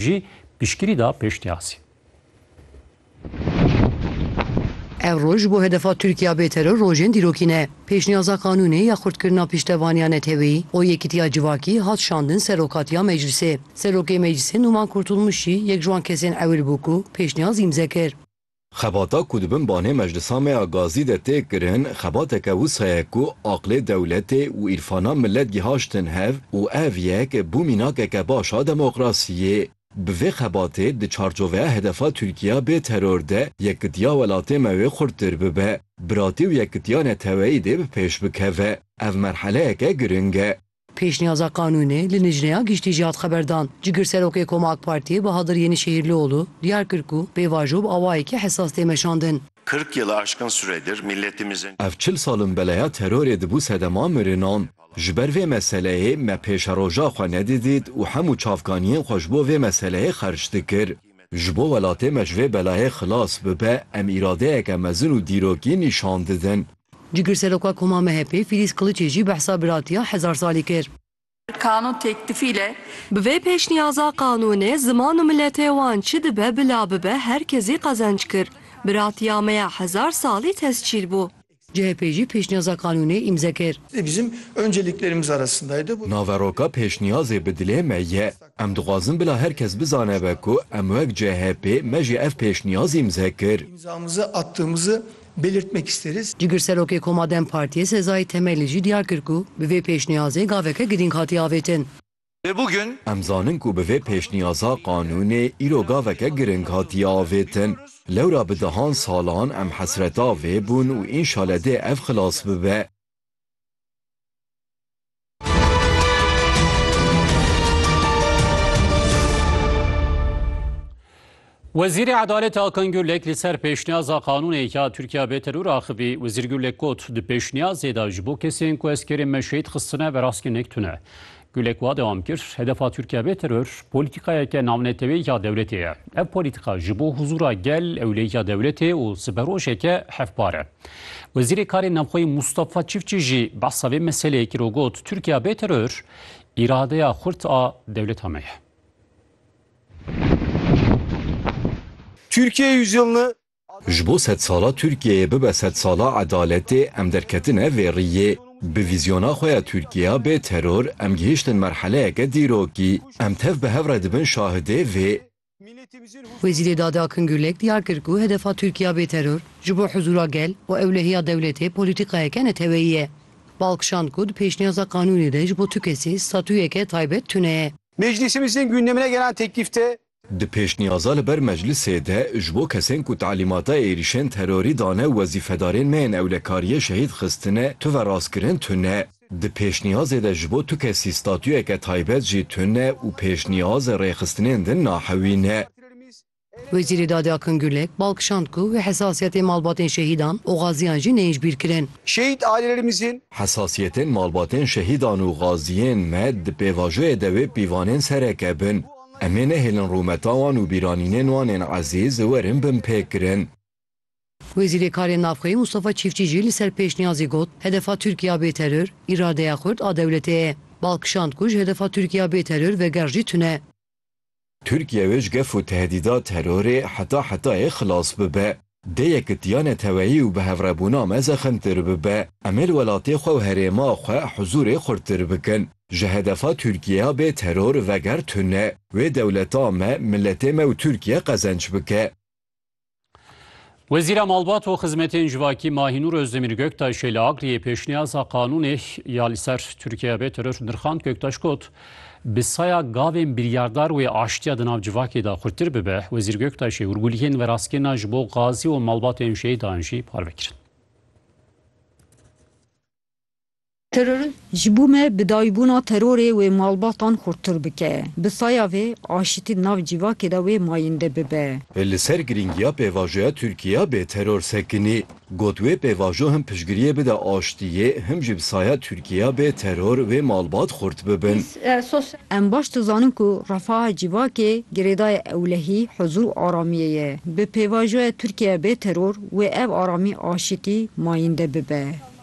jî piştgirî da pêşniyazî. Ev roj ji bo hedefa Tirkiya bêteror rojên dîrokî ne. Pêşniyaza qanûnê ya xurtkirina piştevaniya neteweyî û yekîtiya civakî hat şandin ser rokatiya meclisê. Serokê meclisê Numan Kurtulmuş jî yek ji wan kesên ewil bû ku pêşniyaz îmze kir. Xebata ku di bin banê meclisa me ya gazî de tê kirin, xebateke wisa ye ku aqlê dewletê û îrfana milet gihaştin hev û ev yek bû mînakeke baş a demokrasiyê. Bi vê xebatê di çarçoveya hedefa Tirkiya bê teror de yekitiya welatê me wê xurttir bibe, biratî û yekitiya neteweyî dê bi pêş bikeve. Ev merheleyeke giring e. Pêşniyaza qanûnê li Lijneya Giştî jî hat xeberdan. Cigirserokê Koma AK Partiyê Bahadir Yenişehîrlioğlu diyar kir ku pêvajo bi awayekî hesas tê meşandin. Kırk yılı aşkın süredir milletimizin. Ev çil sal in beleya terorê dibû sedema mirinan. Ji ber vê meseleyê me pêşeroja xwe nedidît û hemû çavkaniyên xwe ji bo vê meseleyê xerc dikir. Ji bo welatê me ji vê belayê xilas bibe em îradeyeke mezin û dîrokî nîşan didin. Cigirseroka Koma MHP'ê Fîlîz Qiliçê jî behsa biratiya hezar salî kir. Kanûn têklifî le. Bi vê pêşniyaza qanûnê ziman û miletê wan çi dibe bila bibe her kezî qezenc kir. Biratiya me ya hezar salî tescîl bû. CHP jî pêşniyaza qanûnê îmze kir. Naveroka pêşniyazê bi dilê me ye. Em dixwazin bila her kes bizane be ku em wek CHP me jî ev pêşniyaz îmze kir. Cigirserokê Koma dem Partiyê Sezai Temeli jî diyar kir ku bi vê pêşniyazê gaveke girîng hatiye avêtin. Lê bûgün. Em zanin ku bi vê pêşniyaza qanûnê îro gaveke giring hatiye avêtin. Lewra bi dehan salan em hesreta vê bûn û înşale dê ev xilas bibe. Wezîrê Edaletê Akan Gurlek li ser pêşniyaza qanûnê ya Tirkiya bê teror axivî. Wezîr Gurlek got, Di pêşniyazê de ji bo kesên ku eskerên me şehîd xistine ve rastgirnek tune. Gurlek wa dewam kir, Hedefa Tirkiya bê teror polîtîkayeke navnetewê ya dewletê ye. Ev polîtîka ji bo huzûra gel, ewleyiya dewletê û siberojeke hevpar e. Wezîrê Karên Navxweyî Mûstafa Çiftçî jî behsa vê meseleyê kir û got, Tirkiya bê teror îradeya xurt a dewleta me ye. Türkiye yüzyılını Ji bo sedsala Tirkiyeyê bibe sedsala edaletê em derketine vê riyê. Bi vîzyona xwe ya Tirkiya bê teror em gihiştin merheleyeke dîrokî. Em tev bi hev re dibin şahidê vê. Wezîrê Dadê Akın Gürlek diyar kir ku hedefa Tirkiya bê teror ji bo huzûra gel û ewlehiya dewletê polîtîkayeke neteweyî ye. Balkişand ku di pêşniyaza qanûnê de ji bo tu kesî statuyeke taybet tune ye. Meclîsê Miznên gündemine gelen teklîf de, Di pêşniyaza li ber meclisê de ji bo kesên ku talîmata êrîşên terorî dane wezîfedarên me yên ewlekariyê şehîd xistine tuve rastkirin tune. Di pêşniyazê de ji bo tu kesî statuyeke taybet jî tune û pêşniyaz rêxistinên din nahewîne. Wezîrê Dadê Akın Gürlek, bal kişand ku wê hesasiyetên malbatên şehîdan û gaziyan jî neyîjbîr kirin. Şehîd ailelerimizin. Hesasiyetên malbatên şehîdan û gaziyên me di pêvajoyê de wê pîvanên sereke bin. Em ê nehêlin rûmeta wan û bîranînên wan ên ezîz werin binpêkirin. Wezîrê Karên Navxweyî Mustafa Çîfçî jî li ser pêşniyazê got, Hedefa Tirkiye a bêteror, îradeya xurt a dewletê ye. Bal kişand ku ji hedefa Tirkiye a bêteror veger jî tune. Tirkiye wê ji gef û tehdîda terorê heta hetayê xilas bibe. Dê yekitiya neteweyî û bihevrebûna me zexmtir bibe. Em ê li welatê xwe û herêma xwe huzûrê xurttir bikin. Ji hedefa Tirkiyeya bê teror veger tune. Wê dewleta me, miletê me û Tirkiye qezenç bike. Wezîra Malbat û Xizmetên Civakî Mahînûr Özdemir Göktaşê li Akriyê pêşniyasa qanûnê ya li ser Tirkiye bê teror nirxand Göktaş got bi saya gavên biryardar wê aştiya di nav civakê de xurtir bibe Wezîr Göktaşê hûrguliyên veraskêna ji bo gazî û malbatên şehîdan jî parve kirin. Teror ji bo me bi dayîbûna terorê wê malbatan xurttir bike. Bi saya vê, aşitî di nav cîvakê de wê mayînde bibe. Li ser girîngiya pêvajoya Tirkiye bê teror sekinî, got wê pêvajo him piştgiriyê bide aştiyê, him jî bi saya Tirkiye bê teror wê malbat xurt bibin. Em baş dizanin ku refaha cîvakê girêdaya ewlehî huzur û aramiyê ye. Bi pêvajoya Tirkiye bê teror wê ev aramî aşitî mayînde bibe.